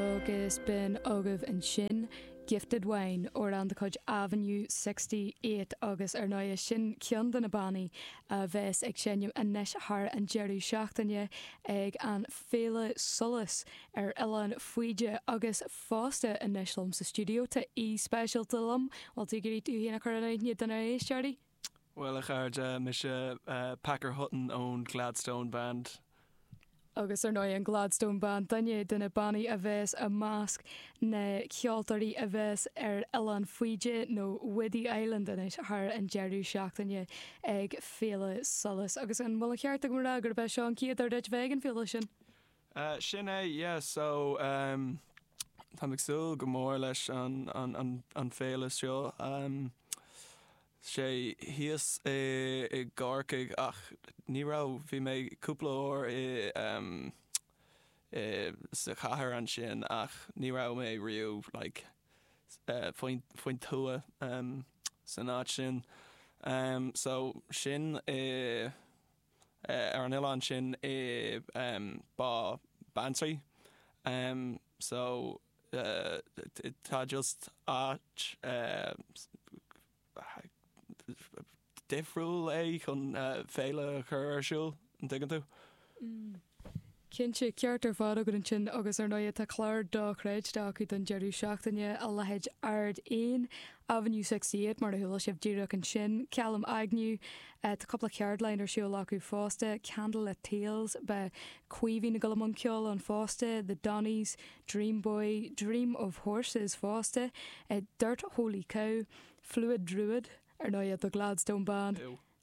agus b'in agaibh ansin Gifted Wine ón gcuid Avenue Sixty Eight agus ar ndóigh sin ceann de na bannaí a bheas ag seinm anois thar an deireadh seachtaine ag an Féile Solas ar Oileán Faoide agus fosta anois liom sa stiúideo tá aoi speisialta liom, bhfuil tú ag iarraidh tú féin a chur in aithne do na éisteoirí? Bhuel, a chairde, mise Packer Hutton ón Gladstone Band. Agus, ar ndóigh, an Gladstone Band, duine de na bannaí a bheas i measc na ceoltóirí a bheas ar Oileán Faoide, nó Whiddy Island anois, thar an deireadh seachtaine ag Féile Solas. Agus an bhfuil an ceart agam a rá gurb é seo an chéad uair duit bheith ag an bhféile sin? Eh, sin é, yeah, so, ehm, táim ag súil go mór leis an, an, an, an féile seo. Ehm, tá sé thíos i, i gCorcaigh ach ní raibh, bhí mé cúpla uair i, ehm, i, sa chathair ansin ach ní raibh mé riamh, like, eh, faoin, faoin tuath, ehm, san áit sin. Ehm, so sin é. ar an oileán sin i Bá Beanntraí so tá just áit dhifriúil é chun féile a chur ar siúl, an dtuigeann tú? Cinnte, ceart ar fad agat ansin, agus ar ndóighe tá clár dochreidte acu don deireadh seachtaine, a leithéid Ard Eoin, Avenue Sixty Eight, mar a chuala sibh díreach ansin, Kalem Agnew, tá cupla ceardlann ar siúl acu fosta, Candlelit Tales, beidh Caoimhín ag gabháil i mbun ceoil ann fosta, The Donnys, Dream Boy, Dream of Horses fosta, Dirt Holy Cow, Fluid Druid, ar ndóighe, The Gladstone Band,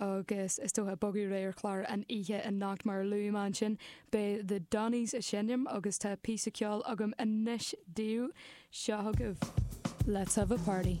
agus is dócha, bogadh ré ar chlár an oíche anocht mar a luaigh mé ansin. Beidh The Donnys ag seinm agus tá píosa ceoil agam anois daoibh. Seo chugaibh Let's Have a Party.